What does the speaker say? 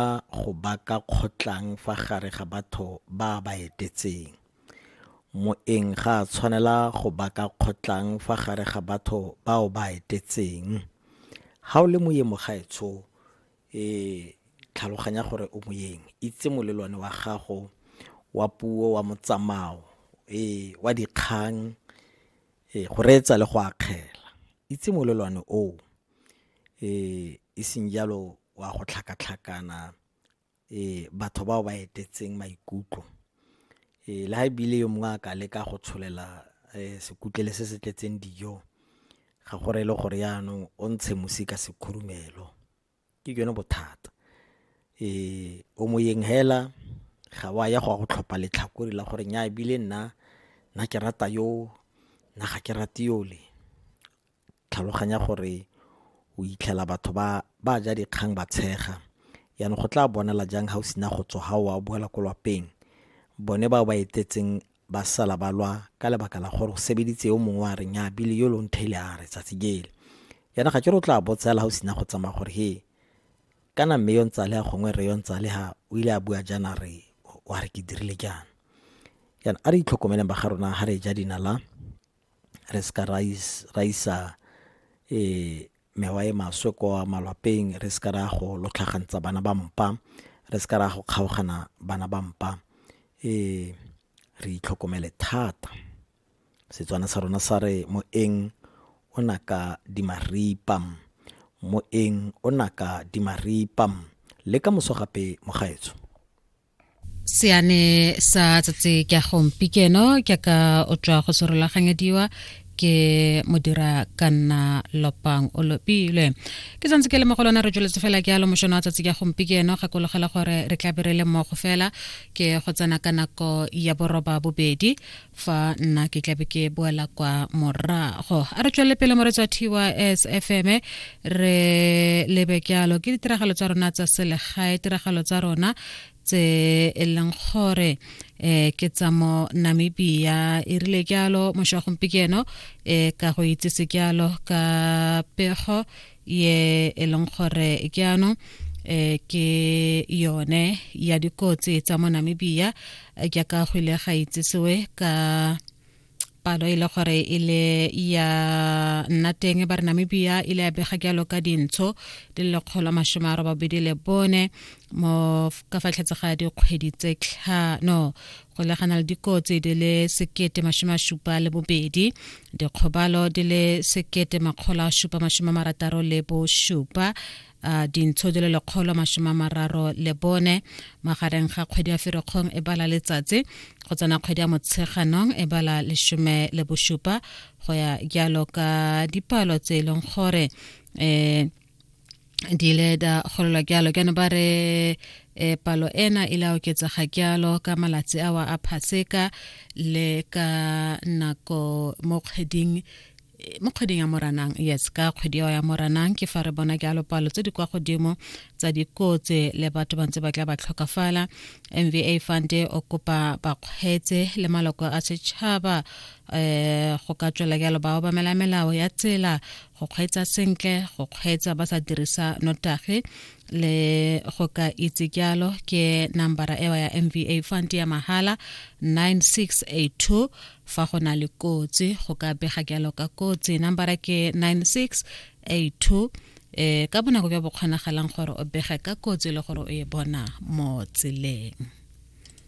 ba go baka kgotlang fa gare ga batho ba a ba etetseng. Moeng ga a tshwanela go baka kgotlang fa gare ga batho bao ba etetseng. Ga o le moye mogaetsho e tlhaloganya gore o moyeng itse molelwane wa gago wa puo wa motsamao e wa dikgang e go reetsa le go akgela itse molelwane oo e seng jalo o a go tlhakatlhakana batho bao ba etetseng maikutlo. Le ha ebile yo mongwe a ka leka go tsholela sekutlele se se tletseng dijo, ga go reye le gore yanong o ntshe mosi ka sekhurumelo, ke jone bothata. O moyeng hela, ga wa ya go a go tlhopha letlhakore la gore nyaa ebile nna ke rata yo, nna ga ke rate yole. tlhaloganya gore o itlhela batho ba ba ja dikgang ba tshega yaanong go tla bonala jang ga o sena go tswa ga oa o boela ko lwapeng bone bao ba etetseng ba sala ba lwa ka lebaka la gore o sebeditse yo mongwe a reng ya bile yo lone thele a re tsatsi jele yana ga ke re o tla botsela ga o sena go tsamaya gore he kana mme yo ntsale ya gongwe re yo ntsale ga o ile a bua jaana re wa re ke dirile jaana yana a re itlhokomeleng ba ga rona ga re ja dinala re se ka ra isa um mewa e maswe kwa malwapeng re se ka ra go lotlhagantsa bana ba mpa re se ka ra go kgaogana bana ba mpa um re itlhokomele thata Setswana sa rona sa re moeng o naka dimaripa moeng o naka dimaripa le ka moso gape mogaetsho seane sa tsatsi ke a gompikeno ke ka o tswa go serolaganyediwa ke modira ka nna lopang o lopilwe ke santse ke le mogolwana re tsweletse fela ke alo mošono wa tsatsi ka gompikeno gakologela gore re tla be re le mmogo fela ke go tsena ka nako ya boroba bobedi fa nna ke tlabe ke boela kwa morago a re tswelele pele moretsa tys fm re lebe jalo ke ditiragalo tsa rona tsa selegae tiragalo tsa rona tse e leng gore um ke tsa mo namibia e rile jalo mošwa gompieno um ka go itsese jalo ka pego ye e leng gore ke ano eh ke yone ya dikotsi tsa mo Namibia ke ka go ile ga itsesewe ka palo e le gore e le ya nna teng ba re namibia e le ya bega jalo ka dintsho di le lekgolo masome a robabedi le bone mo ka fatlhetse ga dikgwedi tse tlhano go legana le dikotsi di le sekete masome a supa le bobedi dikgobalo di le sekete makgolo a supa masome a marataro le bosupa uh, dintsho di le lekgolo masome a mararo le bone magareng ga kgwedi ya ferekgong e bala letsatsi go tsena kgwedi ya motsheganong e bala lesome le bosupa go ya jalo ka dipalo tse e leng gore um eh, di ile da golelwa jalo kana ba re e palo ena e la oketsega jalo ka malatsi awa a phaseka le ka nako mo kgweding mo kgweding ya moranang yes ka kgwedi eo ya moranang ke fa re bona jalo palo tse di kwa godimo tsa dikotse le batho ba ntse ba tla ba tlhokafala mva fund o kopa bakgweetse le maloko a setšhaba um go ka tswela jalo ba obamela melao ya tsela go kgweetsa sentle go kgweetsa ba sa dirisa notagi le go ka itse jalo ke nambara ewa ya mva fund ya mahala 9682 fa go na le kotsi go ka bega jalo ka kotsi nambara ke 9682 e eh, ka bonako bja bokgonagalang gore o bege ka kotsi le gore o e bona mo tseleng